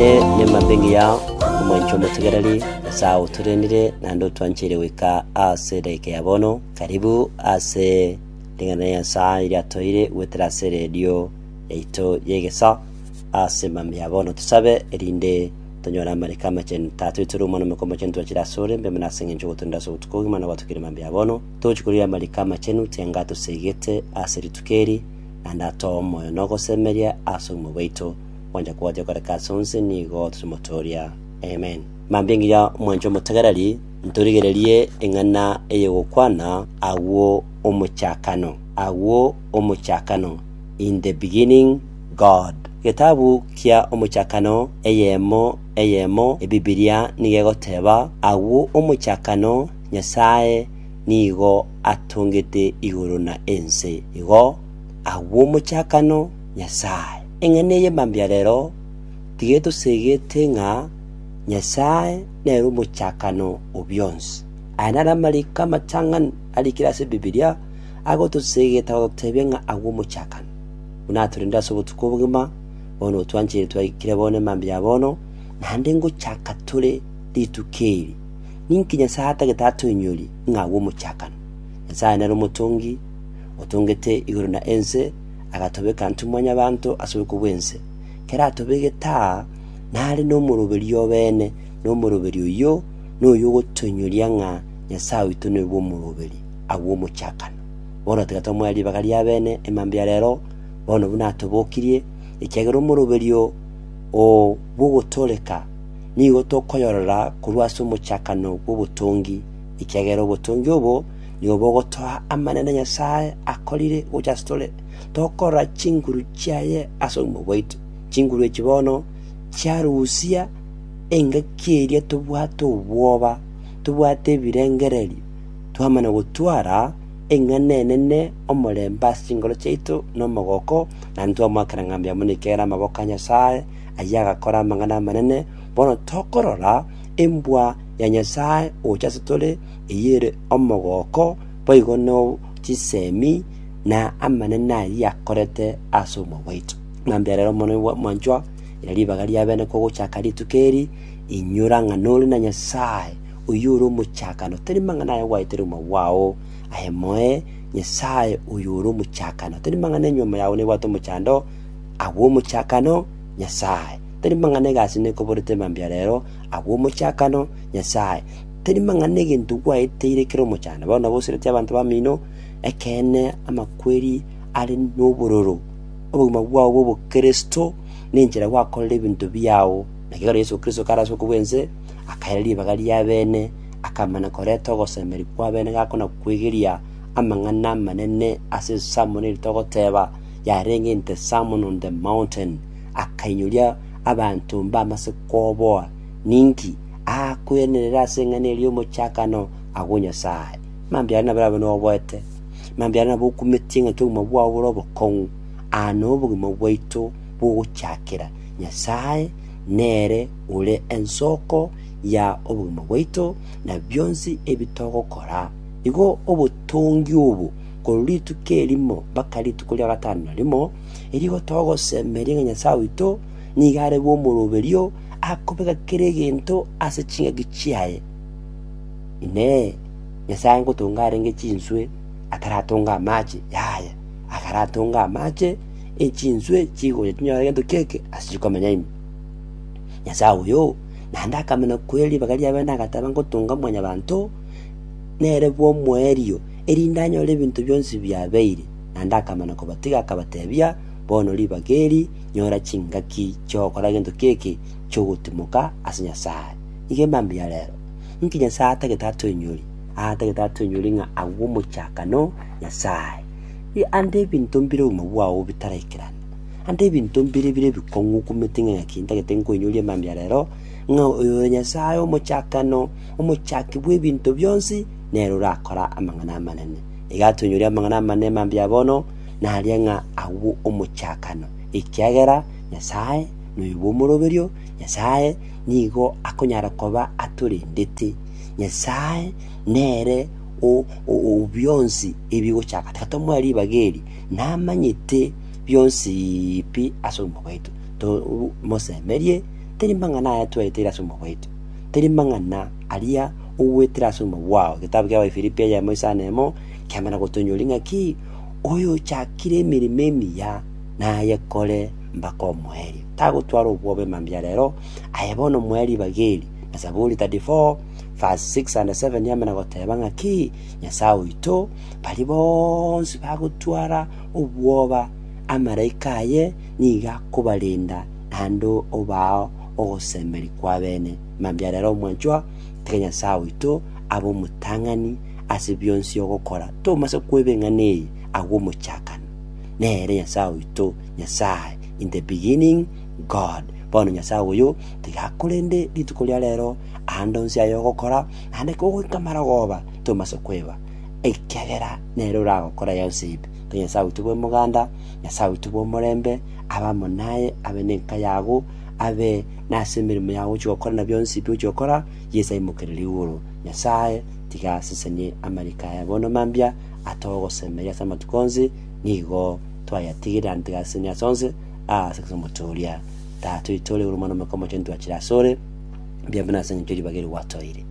Ere nemambe engiya, omwancho omotegereri, Nyasae agoturenire, naende otwancheire goika ase edaika ya bono. Karibu ase ring'ana ria Nyasae eria toire goetera ase eredio yaito y'egesaa ase mambia ya bono. Tosabe erinde tonyore amariko amachenu. Tata oito ore Omwana Omoika Omochenu, twachire ase ore, mbemo nase engencho ogoturenda ase obotuko bogima na gwatokire mambia ya bono. Togochia korigia amariko amachenu, tianga atoseegete ase rituko eri, naende atoe omoyo na ogosemeria ase obogima bwaito. Mwancha kobwatia koreka ase onse nigo totomotooria. Amen. Mambia ngiya mwanche omotegereri, ntorigererie eng'ana ey'ogokwana agwo omochakano, agwo omochakano, In the beginning, God. Getabu kia Omochakano eyemo eyemo Ebibilia nigo egoteba, Agwo omochakano Nyasae nigo atongete igoro na ense. Igo, agwo omochakano Nyasae. Eng'ana eye mambia rero tigetosegete ng'a Nyasae nere omochakano o bionsi. Aya naro amariko amatang'ani arikire ase Bibilia agotosegeta gototebia ng'a agwo omochakano. Buna atorendire ase obotuko obogima, bono otwancherire twaikire bono emambia ya bono, naende ngochaka tore rituko eri. Ninki Nyasae atagete atoinyorie ng'a agwo omochakano? Nyasae nere omotongi, otongete igoro na ense, agatobeka intwe mwanyabanto ase oboko bw'ense, keratobegete aa, nare nomoroberio obeene, na omoroberio oyio noyo ogotoinyoria ng'a Nyasae oito noyo bw'omoroberi agwo omochakano. Bono tiga tomoe ribaga ri'abeene emambia ya reero, bono buna atobokirie, ekiagera omoroberio oo bw'ogotooreka nigo tokoyorora korwa ase omochakano bw'obotongi, ekiagera obotongi obo Nigo bogotoa amanene Nyasae akorire gocha ase tore, tokorora chinguru chiaye ase obogima bwaito. Chinguru echi bono chiarusia engaki eria tobwate obwoba, tobwate ebirengererio, twamana gotwara eng'ana enene omorembe ase chinkoro chiaito na omogoko, na ntwamoakera ng'a mbuya mono ekiagera amaboko a Nyasae, ayio agakora amang'ana amanene, bono tokorora embwa ya Nyasae gocha ase tore, eyere omogooko boigo no chisemi na amanene ayio akorete ase omoyo bwaito. Ng'a mberere omonene mwanchwa, ira ribaga ri'abene kogochaka rituko eri, inyora ng'a nore na Nyasae, oyio ore omochakano, tari mang'ana aye gwaetera omoyo bwao aye moe, Nyasae oyo ore omochakano, tari mang'ana enyomo yao nebwate omochando, agwo omochakano, Nyasae, tari mang'ana egasi nekoborete mambia rero, agwo omochakano, Nyasae. Tari mang'ana negento gwaeteire kera omochando, bao naboseretie abanto bamino. Ekeene, amakweri are nobororo. Obogima bwao bw'obokristo nenchera gwakorera ebinto biao. Nakio ekero Yeso Kristo kare ase okobua ense, akaira ribaga ri'abene, akamana koreta ogosemeria kw'abene gako na kwegeria amang'ana amanene ase esamono eri togoteba yarenge in the sermon on the mountain, akainyoria abanto mbamase koboa Ninki aakwenerera ase eng'ana eria y'omochakano agwo o Nyasae? Mambia aria nabarabe noboete, mambia aria nabokumetie ng'a intwe obogima bwao bore obokong'u. Aa nobogima bwaito bw'ogochakera. Nyasae nere ore ensoko ya obogima bwaito na bionsi ebi togokora. Igo obotongi obo korwa rituko erimo mpaka rituko ria gatano na rimo, erio igo togosemeria ng'a Nyasae oito nigo are bw'omoroberio, akobeka kera egento ase chingaki chiaye. Inee! Nyasae ngotonga arenge chinswe ataratonga amache? Yaya, akaratonga amache, echinswe chigocha chinyore gento ki'eke ase chikomenya ime. Nyasae oyo, naende akamenya kweri ribaga riaye na agateba, Ngotonga mwanyabanto, nere bw'omoerio, erinde anyore ebinto bionsi biabeire. Naende akamenya kobatiga, akabatebia, Bono ribaga eri nyora chingaki chi'ogokora gento keke chi'ogotimoka ase Nyasae. Nigo emambia ya rero. Inki Nyasae atagete atoinyori? Atagete atoinyori ng'a agwo omochakano Nyasae. I ande ebinto mbire obogima bwao bitaraikerana. Ande ebinto mbire bire ebikong'u okumete ng'a ng'aki ntagete nkoinyorie emambia ya rero, ng'a oyo ore Nyasae omochakano, omochaki bw'ebinto bionsi, nere orakora amang'ana amanene. Iga atoinyori amang'ana amanene emambia ya bono, naria ng'a agwo omochakano, ekiagera Nyasae noyobe omoroberio, Nyasae nigo akonyara koba atorendete. Nyasae nere o- o- o bionsi ebigochaka, tiga tomoe ribaga eri, namanyete bionsi pi ase obogima bwaito. To- u- mosemerie, teri mang'ana aya tweteire ase obogima bwaito, teri mang'ana aria ogwetire ase obogima bwao. Egetabu kia Abaefilipi eyemo isano emo, kiamana gotoinyoria ng'a ki? Oyochakire emeremo emiya nayekore mpaka omoerio. Tagotwara obwobe mambia ya rero, aye bono omoerio bageri. Na Zaburi 34 verse 6 and 7 yamana goteba ng'a ki? Nyasae oito, bari bonsi bagotwara obwoba amaraika aye nigo akobarenda naende obao ogosemeri kw'abene. Mambia ya rero omwanchwa, tiga Nyasae oito abe omotang'ani ase bionsi ogokora, tomasa kweba eng'ana eye agwo omochakano, Nere Nyasae oito, Nyasae, in the beginning, God. Bono Nyasae oyo, tiga korende rituko ria rero, aande onsi aya ogokora, naende kogoika marogoba, tomasa kweba, ekiagera nere oragokora yonsi ebe. Tari Nyasae oito bw'emoganda, Nyasae oito bw'omorembe, abe amo naye, abe nenka yago, abe nase emeremo yago ogochia gokora na bionsi ebi ogochia gokora, Yeso aimokererie igoro. Nyasae. tiga asesenie amariko aya bono mambia atogosemeria ase amatuko onsi, nigo twayatigire ande tiga asesenie ase onsi aase ase omote oria. Tata oito ore igoro Omwana Omoika Omochenu twachire ase ore, mbiabe buna ase engencho y'eribaga eri gwatoire.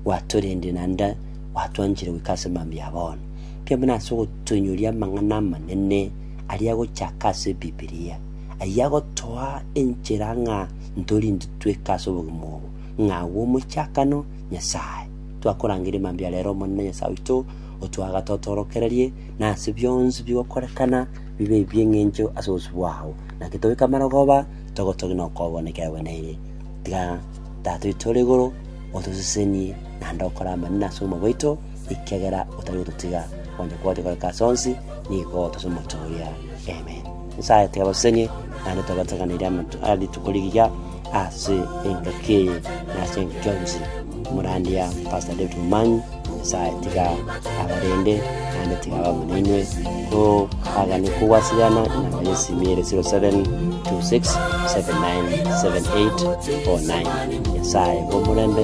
Gwatorendire naende gwatwanchire goika ase mambia ya bono. Mbiabe buna ase ogotoinyoria amang'ana amanene aria agochaka ase Ebibilia, ayio agotoa enchera ng'a ntori intwe tweka ase obogima obo, ng'a agwo omochakano Nyasae. Twakorangeria mambia a rero, Omonene Nyasae oito, otwagate otorokererie, na ase bionsi bigokorekana bibe ebi'engencho ase obosio bwao. Naki tobeke amarogoba, togotogie na okoobua na ekiagera gwenerire. Tiga Tata oito ore igoro otosesenie naende okore amanene ase obogima bwaito, ekiagera otari gototiga, onye kwagotire koreka ase onsi, nigo otose omochie oria. Amen. Nyasae tiyabasesenirie, naende tabateganeirie amanto a rituko rigiya ase engaki eye na ase engaki yonsi. Omorandia Pastor David Momanyi, Nyasae tiga abarende, naende tiga abe amo nainwe, koagane kogwaseriana namba ya esimi ere 0726797849. Nyasae bw'omorembe.